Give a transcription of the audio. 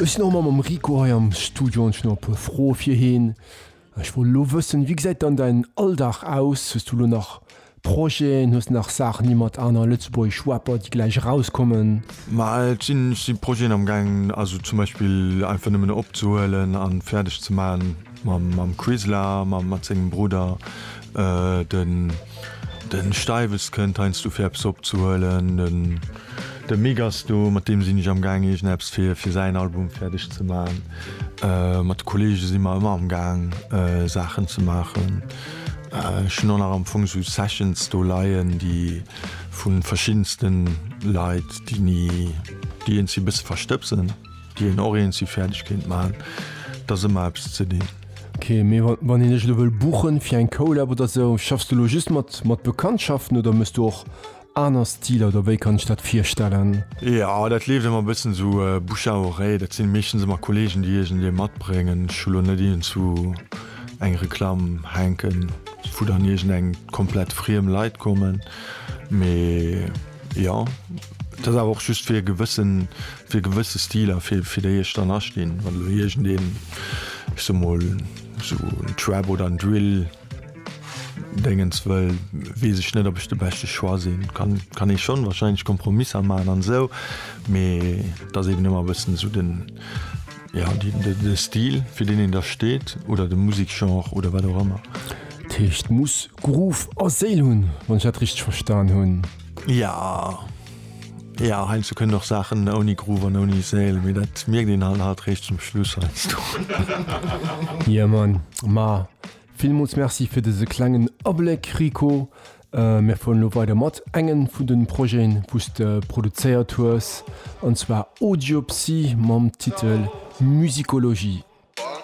Ech sinn och mam mam Rico hei am Studio an ech hunn nach e puer Froe fir heen. Ech wollt elo wëssen, wéi gesäit dann däin Alldag aus? Hues du elo nach Projeten? Hues de nach Saachen, déi mat aner lëtzebuergesch Rapper, déi gläich erauskommen? Ma et sinn, et si Projeten am Gaang, also zum Beispill einfach nëmmen opzehuelen a fäerdeg ze maachen mam mam Quizla, mam mat sengem Brudder. Den den Steiwes kënnt heiansdo fir eppes opzehuelen. De Megasto, mat deem sinn ech am gaang iergendeppes fir fir säin Album fäerdeg ze man. Mat de Kollege si mer ëmmer am gaang Saachen ze maachen. Ech hunn och nach am Fong sou Sessions do leien, déi vu verschiddenste Leit, déi ni, déi eens si bësse verstëbsen, déi een och eens si fäerdeg kéint man. Et ass ëmmer eppes ze dinn. Ok, mee wann een dech elo wëll buchen fir eng Collab oder sou, schaffs du elo just mat mat Bekanntschaften oder mëss du och Aner Stiler oder wéi kann ech dat virstellen? Jo, dat leeft ëmmer e bëssen esou bouche à oreille. Dat sinn meeschtens ëmmer Kollegen, déi iergendee matbréngen. Ech hu lo net iergendwou eng Reklamm hänken, wou dann iergendeng komplett friem Leit kommen. Mee jo, et ass awer och just fir e gewëssen, fir gewësse Stiler, fir fir déi ech dann astinn. Wann elo iergendeen, ech soe mol esou en Trap oder en Drill. Dengens wëll wees ech net op ech de beschte Choix sin. Kann ee schon wahrscheinlech Kompromisser maan an sou, mee et ass eben emmer bessen sou den ja de Stil fir den een da steet oder de Musikgenre oder wat och emmer. Dat heescht muss Groove a Séil hun wann ech dat richteg verstan hun? Ja. Ja heinz du kënnen och Saachen ouni Groove an ouni Sail, mee dat mierkt een halt halt réischt zum Schluss heiansdo. Yeah man, ma villmools Merci fir dëse klengen Abléck Rico. Mir fueren elo weider mat engen vun de Projeten wou s de produzéiert hues, an zwar Audiopsy mam Titel Musicologie.